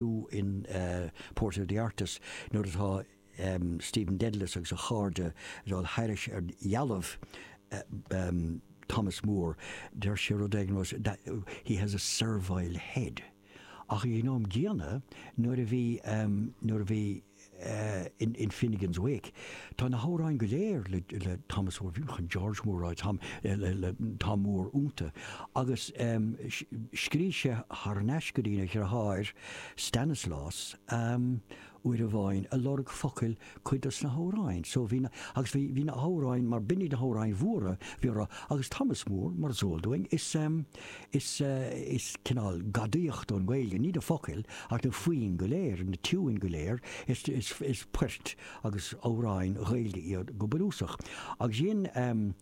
in Portrait of the Artist nuair atá Stephen Dedalus agus a chairde ag dul thairis ar dhealbh Thomas Moore, deir sé rud éigin mar 'he has a servile head'. Ach ag an am gcéanna, nuair a bhí, nuair a bhí. in Finnegans Wake. Tá na hamhráin go léir le Thomas Moore, chan George Moore, tá Moore iontu, agus scrígh sé thar n-ais go dtína dhriotháir Stanislaus uair amháin ag lorg focail cuid dos na hamhráin so. Bhí na, agus bhí na hamhráin mar b'in iad na hamhráin mhóra bhí orthu, agus Thomas Moore mar is eol dúinn is. Is, is cineál gadaíocht ón nGaeilge, ní na focail ach na foinn go léir, na tiúin go léir, is, is, is poirt agus amhráin Ghaeilge iad go bunúsach. Agus dhein ehm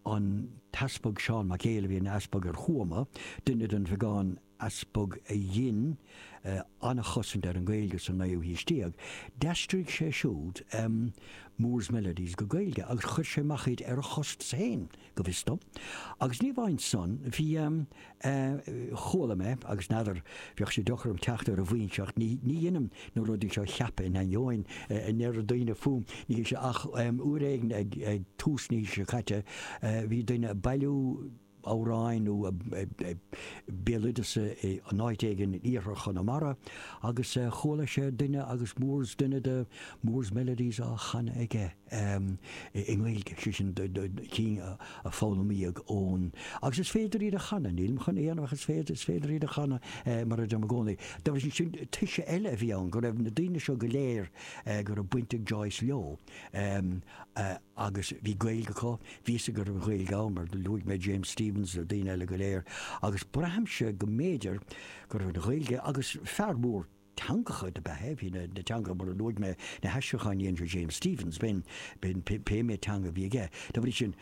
an tEaspag Seán Mac Éil a bhí ina Easpag ar Thuama, duine den bheagán Easpag a dhein eh, an-chosaint ar an nGaeilge sa naoú haois déag, d'aistrigh sé siúd ehm Moore's Melodies go Gaeilge agus chuir sé amach iad ar a chostas fhéin. go bhfios dom. Agus ní amháin san, bhí, em. eh. chuala mé, agus n'fheadar, bheadh sé deacair orm teacht ar an bhfoinse ach ní, ní dheinim na rudaí seo a cheapadh in ainneoin a ndeir daoine fúm, níl sé, ach, em, uair éigin ag, ag tús na haoise seo caite, eh, bhí duine ag bailiú amhráin nó béaloideas in áit éigin in iarthar Chonamara agus, eh, chuala sé duine agus Moore's, duine de Moore's Melodies á chanadh aige. em, i nGaeilge, sé sin, do, do, do, cinn a, a foghlaimíodh ón. Agus is féidir iad a chanadh, nílim chun a dhéanamh ach is féidir, is féidir iad a chanadh eh, mar a deirim i gcónaí. Dá bhrí sin, sin toise eile a bhí ann, go raibh na daoine seo go léir eh, go raibh baint ag Joyce leo, em, eh, agus bhí Gaeilge acu, bhí a fhios aige go raibh Gaeilge ann, mar luaigh mé James Stephens, na daoine eile go léir, agus braithimse go mb'fhéidir go raibh an Ghaeilge, agus fear mór. teangacha do b'ea é. Bhí na teangacha, mar a luaigh mé, na haistriúcháin a dhein sé James Stephens, b'in, b'in, pé méid teanga a bhí aige. Dá bhrí sin,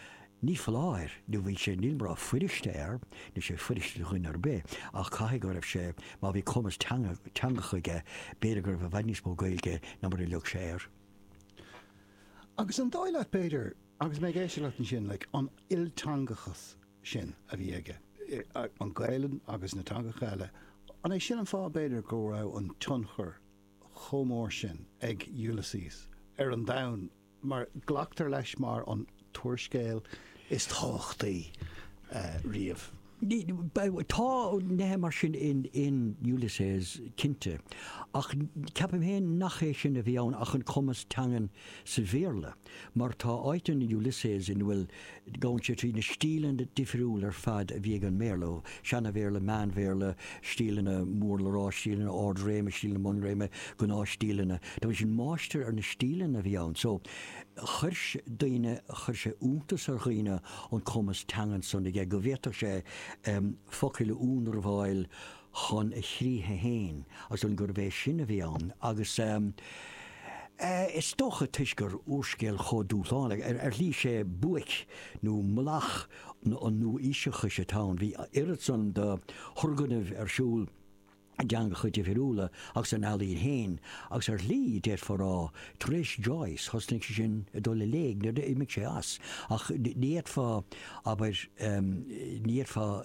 ní foláir nó bhí sé, nílim á rá fuiriste air, níl sé fuiriste do dhuine ar bith, ach caithfidh go raibh sé, má bhí cumas teanga, teangacha aige, b'fhéidir go raibh i bhfad níos mó Gaeilge ná mar a lig sé air. Agus an dóigh leat, b'fhéidir, agus mé ag éisteacht leat ansin, like, an ilteangachas, sin a bhí aige, an Ghaelainn agus na teangacha eile. An é sin an fáth, b'fhéidir, go raibh an tionchar chomh mór sin ag Ulysses ar an domhan mar glactar leis mar an t-úrscéal is tábhachtaí riamh? Tá nithe mar sin in Ulysses, cinnte, ach ceapaim féin nach é sin a bhí ann ach an cumas teangan sa Bhéarla. Mar tá áit in Ulysses ina bhfuil, gabhann sé trí na stíleanna difriúla ar fad a bhí ag an mBéarla, ó Sheana-Bhéarla, Meán-Bhéarla, stíleanna mór le rá, stíleanna ard-réime, stíleanna bun-réime, gnáth-stíleanna. Bhí sé ina mháistir ar na stíleanna a bhí ann. So, chuir daoine, chuir sé iontas ar dhaoine an cumas teangan san aige, go bhféadfadh sé focail a ionramháil, chun a chríche fhéin, agus gurbh é sin a bhí ann, agus is dócha toisc gurb úrscéal chomh dúshlánach, ar shlí is é buaic nó mullach an nua-aoiseachais atá ann. Bhí oiread san de thurgnamh ar siúl i dteangacha difriúla agus san ealaín fhéin, agus ar shlí, déarfá, tar éis Joyce, thosnaigh sé sin ag dul i léig, nuair a d'imigh sé as, ach ní fhéadfá, abair, ní fhéadfá,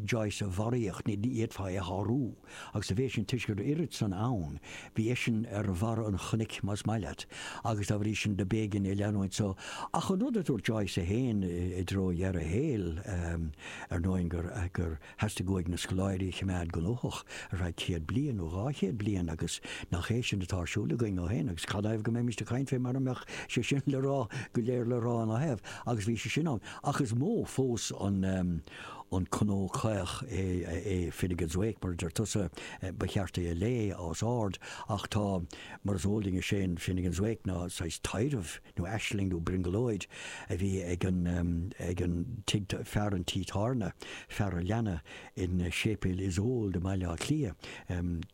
Joyce a bharraíocht, ní fhéadfá é a shárú. Agus bhí eisean toisc go raibh oiread san ann, bhí eisean ar bharra an chnoic, más maith leat, agus dá bhrí sin do b'éigean é leanúint. So, ach an rud a dúirt Joyce é féin i dtreo dheireadh a shaoil, ar ndóigh, gur theastaigh uaidh na scoláirí a choimeád gnóthach ar feadh céad bliain nó dhá chéad bliain agus nach é sin atá ar siúl againn ó shin agus cén fáth go mbeimíst ag caint fé mara mbeadh sé sin le rá go léir le rá ina thaobh. Agus bhí sé sin ann. Ach is mó fós an. an cnó caoch é Finnegans Wake mar a deir tusa, ba cheart é a léamh os ard ach tá mar is eol d'éinne is é Finnegans Wake ná saghas taidhreamh nó aisling nó brionglóid a bhí ag an ag an tigh fear an tí tábhairne, fear an leanna, i Séipéal Iosóid i mBaile Átha Cliath.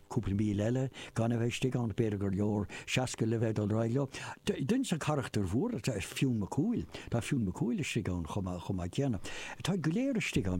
Cúpla céad míle eile gan a bheith istigh ann, b'fhéidir gur leor 60 le bheith ag dul ar aghaidh leo. Duine de na carachtair mhóra is ea Fionn Mac Cumhaill. Tá Fionn Mac Cumhaill istigh ann chomh maith céanna. Táid go léir istigh ann.